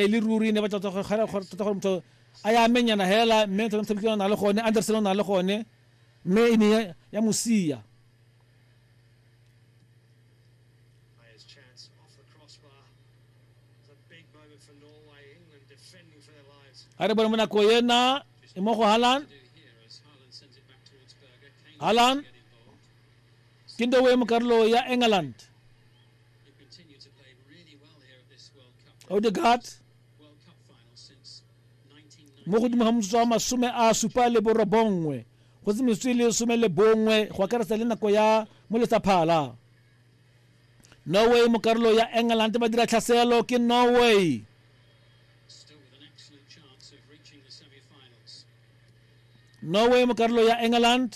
e le ruri ne ba tota gore ga gore tota gore motho a ya menyana hela mme tota motho o na le gone Anderson o na le gone mme e ne ya mosia a re bone mo nako ena e mo go halan halan ke ndowe mo karolo ya england odegaard mo godimo ga motsotso wa masome a supa le borobongwe go se metsotso e le some le bongwe go akaretsa le nako ya mo letsaphala norway mo karolo ya england ba dira tlhaselo ke norway norway mo karolo ya england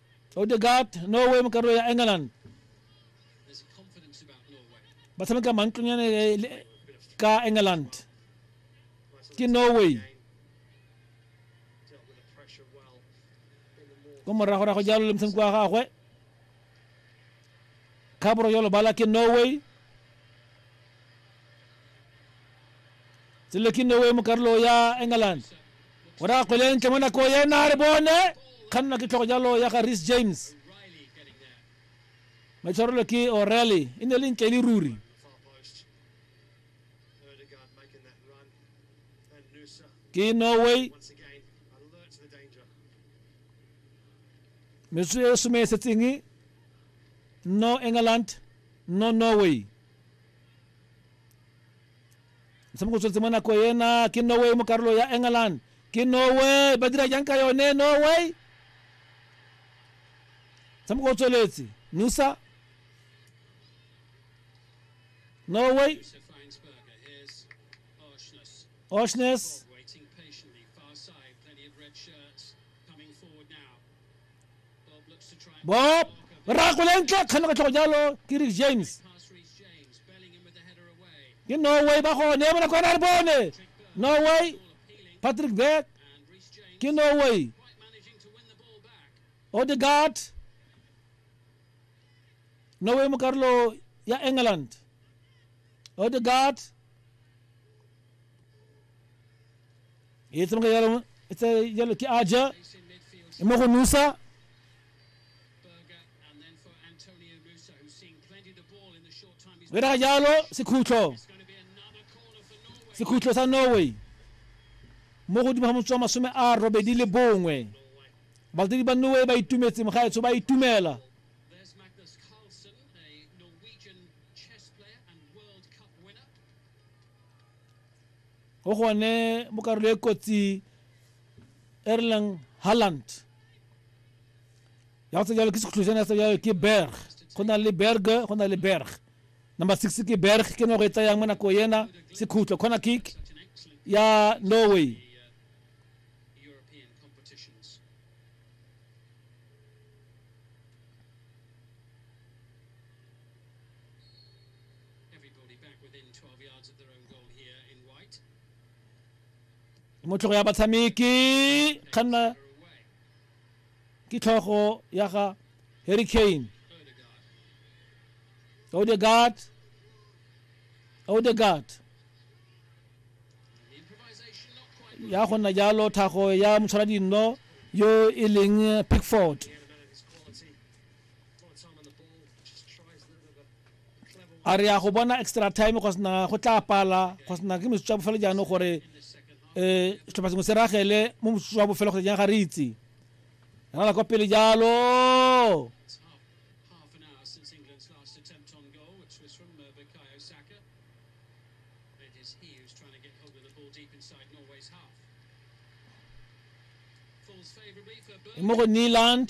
odegaard norway mokarolo ya england ba tshameka mantlonyane ka england ke norway ko moragorago jalo le motshameko wa gagwe khaboro yo lobala ke norway tsele ke norway mo karolo ya england o ra kgolentle mo nako ena re bone kgannwa ke tlhogo jalo ya ga ris james maitshwarelo ke orally e ne le ntle le ruri ke norway metso e some e setseng no england no norway motshameko o tsweletse mo nako ena ke norway mo karolo ya england ke norway ba dira jang ka yone norway motshameko o tsweletse nusa norway oshness bob rako le ntle kgane go tlhogo jalo ke rick james ke norway ba gone bona kwana re bone norway patrick beck ke norway odegaard norway mo karolo ya england odegaard e tsamaka jalo e tsa jalo ke aja e mo go nusa o diraga jalo sekhutlo sekhutlo sa norway mo godimo ga motswa masome a robedi le bongwe balatedi ba norway ba itumetse mogaetsho ba itumela go gone mo karolo e kotsi erlang halland ya go tsa jalo ke sekhutlošana ya tsa jalo ke berg go na le berg go na le berg number six ke berg ke no go e tsayang mo nako ena sekhutlo corner kick ya norway motlhogo ya batshameki kganna ke tlhogo ya ga harry kane odegaard odegaard ya go nna jalo thago ya motshwara dinno yo e leng pickford a re ya go bona extra time go sena go tla pala go sena ke metsotso ya bofelo jaanong gore um setlhopha sengwe se ragele mo motsoso wa bofelo kgotsa jang ga re itse rala kwa pele jalo mo go neland